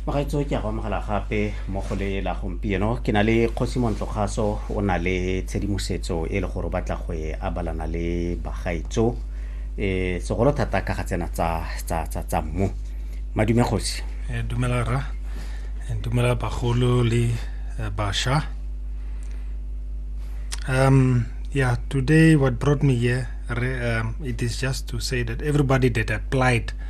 bagaetso ke a go amogela gape mo go le la gompieno ke na le kgosi montlokgaso o na le tshedimosetso e le gore o batla go e abalana le bagaetso um e, segolo thata ka ga tsena tsa mmu madume kgosi eh, dumela ra eh, dumela bagolo le eh, basha um yeah today what brought me here um, it is just to say that everybody that applied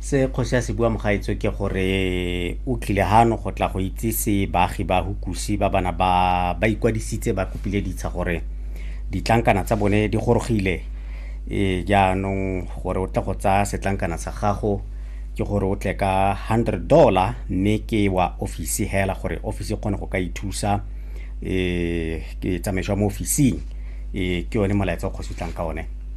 se kgosi ya se bua mogaetso ke gore o tlile gano go tla go itsise baagi ba hukusi ba bana ba ba ikwadisitse ba kopile ditsha gore ditlankana tsa bone di gorogile e jaanong gore o tle go tsaya setlankana sa gago ke gore o tle ka 100 dollar mme ke wa ofisi hela gore ofisi e kgone go ka ithusa um ke tsamaiso ya mo ofising um ke yone molaetsa o kgosi tlang ka one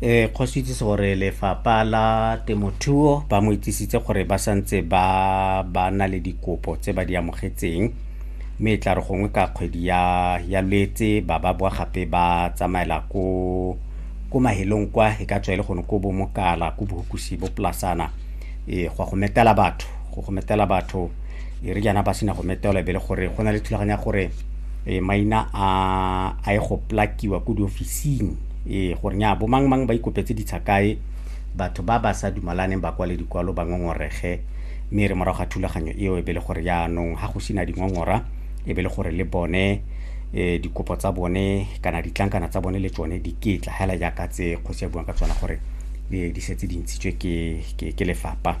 eh go itsise gore lefapha la temothuo ba mo itsisitse gore ba santse ba ba na le dikopo tse ba di amogetseng mme e tla re gongwe ka kgwedi ya ya lwetse ba ba boa gape ba tsamaela ko ko mahelong kwa e ka tswa e le gone ko bomokala ko bohukusi bo polasana e go go metela batho go go metela batho e re jaana ba sena go metelwa e be le gore go na le thulaganyo ya gore e maina a a e go plakiwa ko diofising e gore nya bo mang mang ba ikopetse ditsha kae batho ba ba sa dumalaneng ba kwale dikwalo ba ngongorege mme re morago ga thulaganyo eo e be le gore jaanong ga go sena dingongora e be le gore le bone um dikopo tsa bone kana ditlankana tsa bone le tsone di ketla hela jaaka tse kgosi ya buang ka tsona gore di setse di ntshitswe ke lefapha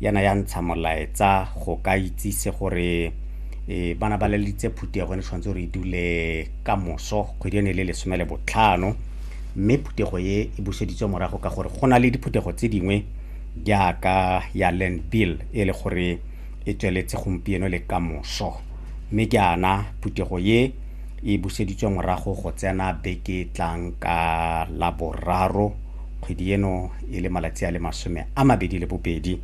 yana ya ntsha molaetsa go ka itsise gore e bana ba lelitse phutego ne tshwanetse gore e dule ka moso kgwedi ene le lesome le botlhano mme phutego e e buseditswe morago ka gore go na le diphuthego tse dingwe jaaka ya land bill e le gore e tsweletse gompieno le ka moso mme jaana phutego e e buseditswe morago go tsena beke tlang ka laboraro kgwedi eno e le malatsi a le masome a mabedi le bobedi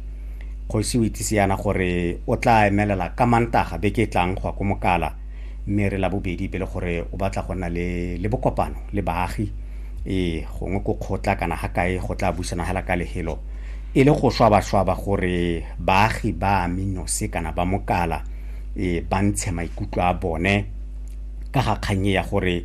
kgosi o itsise yana gore o tla emelela ka mantaga beke e tlang go ya ko mokala mme re la bobedi pele gore o batla go nna le, le bokopano le baagi ee gongwe ko kgotla kana ga kae go tla busana hela ka lehelo e le go swabaswaba gore baagi ba aminose kana ba mokala e ba ntshe maikutlo a bone ka ga kgannye ya gore